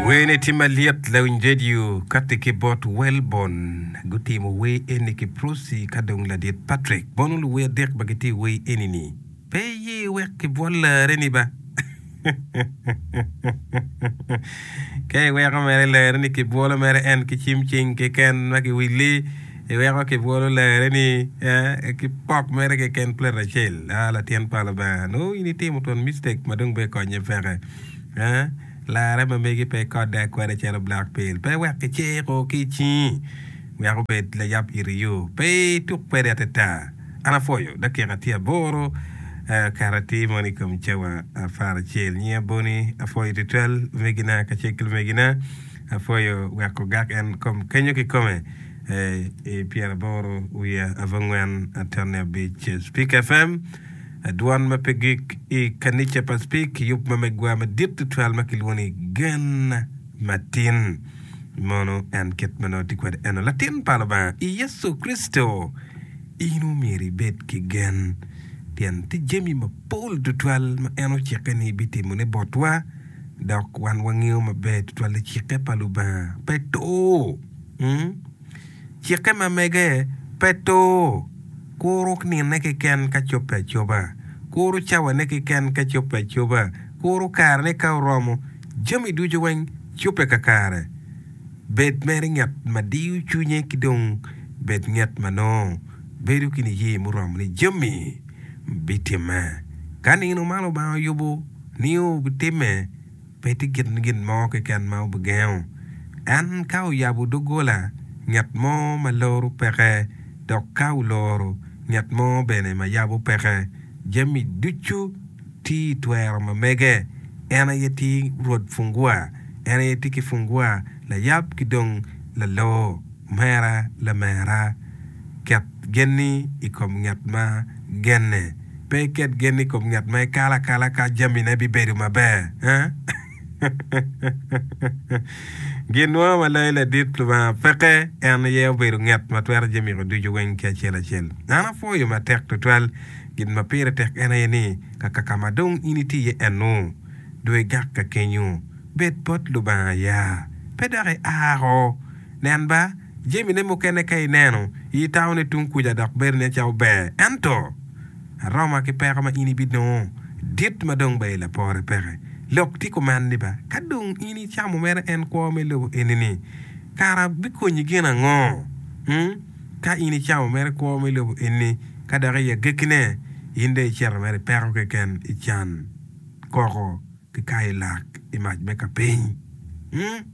Wer ni tim malyet lawiny radio kati ki bot Welborn gutimo wer eni ki Prossy ka dong ladit Patrick bono luwer adek ma gitye i wer eni ni Pe iye wek kibwol larre ni ba Ka iweko mere larre ni kibwolo mere en ki cim cing keken ma kiwili iweko kibwolo larre ni ki pok mere keken plate acel Ah Latin pa Lubanga nongo in itimo twon mistake ma dong bene konye peke Larre ma megi pe ikodde akoda calo black peel. Pe wek kiciko ki i cingi wek obed layab iri yo. Pe ituk kwede atata. An apwoyo. Dakika tye aboro kato atir mono i kom cawa apar acel. Nyinga Bonnie. Apwoyo tutwal lumegina kacel ki lumegina. Apwoyo wek ogak en kom kenyo kikome i pyeraboro wiye abongwen atonne abic Speak FM. Dwan ma pe gik i kanica pa Speke kiyub ma megwa madit tutwal ma kilwongo ni Gen Matin. Mono en kit ma nongo tye kwede eno, Latin pa Lubanga i Yecu Kricito, in omyero ibed ki gen, pien tye jami mapol tutwal ma en ocikke ni bitimone botwa, dok wan wangeyo maber tutwal ni cikke pa Lubanga pe tur. Cikke ma mege pe tur. Kuru nine keken ka cobbe acoba, kuru cawane keken ka cobbe acoba, kuru karene ka oromo, jami ducu weng cobbe kakare. Bed mere ngat ma diyo cwinye ki dong bed ngat ma nongo bedo ki niye muromo ni jami bitimme ka nino ma Lubanga oyubo ni obitimme. Pe tye gin gin mo keken ma obigengo en. Ka oyabo doggola, ngat mo ma loro peke, dok ka oloro, ngat mo bene ma yabo peke. Jami ducu tye i twero ma mege. En aye tye Rwod Fungua. En aye tye ki Fungua, Layab ki dong Lalor. Omera, lamera, ket genni i kom ngat ma genne. Pe iket gen i kom ngat ma ikalo akala ka jamine bibedo maber. Ginwa ma loyo ladit Lubanga peke en aye obedo ngat ma twero jemiko ducu weng ki acel acel. An apwoyo matek tutwal gin ma pire tek en aye ni kaka ka ma dong in iti iye enu, dwe igak ka kenyu, bed bot Lubanga aya, pe dok ia oko. Nen ba! Jamine mukene ka ineno i i taone tung kuca dok bedo nen calo ber, ento aroma ki peko ma in ibinongo dit ma dong ba i lapore peke. Lok ti kuman ni ba ka dong in icamo mere en kwo me lobo enini, kara bikonyi gin ango? Ung, ka in icamo mere kwo me lobo enini, ka dok i agekkine in dong icito mere i peko keken, i can, koko, ki kayo lak i mac me kapiny. Ung.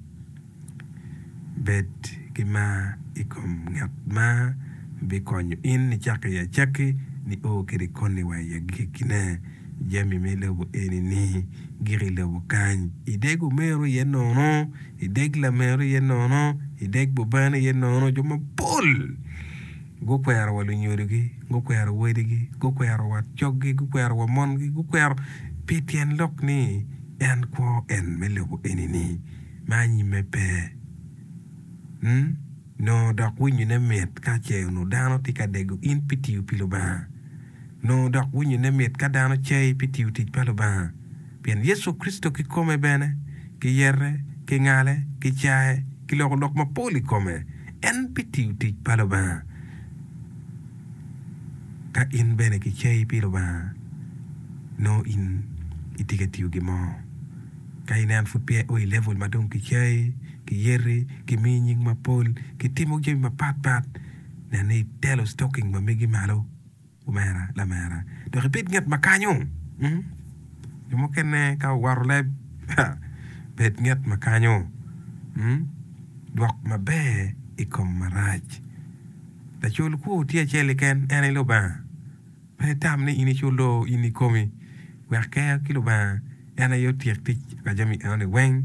Bed ki mar i kom ngat ma bikonyo in icak i acakki nio kede koni wa i agikkine. Jami me lobo eni-ni gik i lobo kany. Ideg omero iye nono, ideg lamero iye nono, ideg bubene iye nono. Jo mapol gukwero wa lunyodogi, gukwero wadigi, gukwero wa coggi, gukwero wa mongi, gukwero pi tyen lok ni en kwo en me lobo eni-ni. me anyimme pe. Ñ, Nongo dok winyone mit ka ce onongo dano tye ka dego in pi tiyo pi Lubanga. Nongo dok winyone mit ka dano cei pi tiyo tic pa Lubanga. Pien Yecu Kricito kikome bene, kiyete, kingale, kicaye, kiloko lok mapol i kome, en pi tiyo tic pa Lubanga. Ka in bene kicei pi Lubanga, nongo in itye ka tiyo gin mo. Ka in en pud peya o i level ma dong kicayi, kiyeti, kimiyi nying mapol, kitimo jami mapat pat, nen ni itelo stocking ma megi malo omera lamera dok ibed nget ma kanyo. Jo mukene ka owato leb, ha, bed nget ma kanyo. Dwok maber i kom marac. Lacul kwo tye acel keken, en aye Lubanga. Pe itam ni in icul loo in ikomi, wek kea ki Lubanga en aye otyek tic pa jami enoni weng,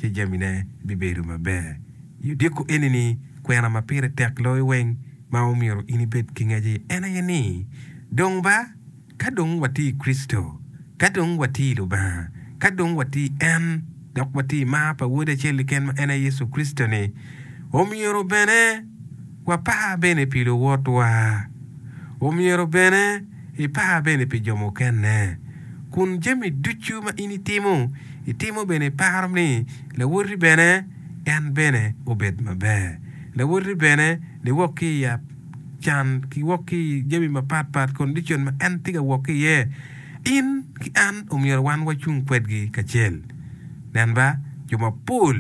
ci jamine bibedo maber. I odiko enini, kwena ma pire tek loyo weng ma omyero in ibed ki ngece en aye ni, Dong ba, ka dong watye i Kricito, ka dong watye i Lubanga, ka dong watye i en, dok watye i mar pa Wode acel-li ken ma en aye Yecu Kricito-ni, omyero bene, Wapar bene pi luwotwa. Omyero bene ipar bene pi jo mukene. Kun jami ducu ma in itimo, itimo bene iparo ni lawoti bene en bene obed maber. Lawoti bene ni wok ki i can ki wok ki i jami mapat pat, condition ma en tye ka wok ki iye. In ki an omyero wan wacung kwedgi kacel. Nen ba, jo mapol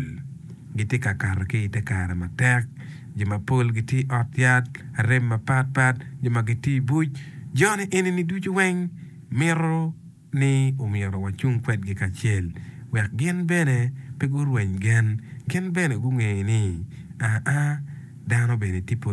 gitye ka kato ki i te kare matek. Jo mapol gitye i ot yat, arem mapat pat, jo ma gitye i buc. Joni eni-ni ducu weng mito ni omyero wacung kwedgi kacel wek gin bene pe gurweny gen. Gin bene gungeyo ni, aa, dano bene tye pud.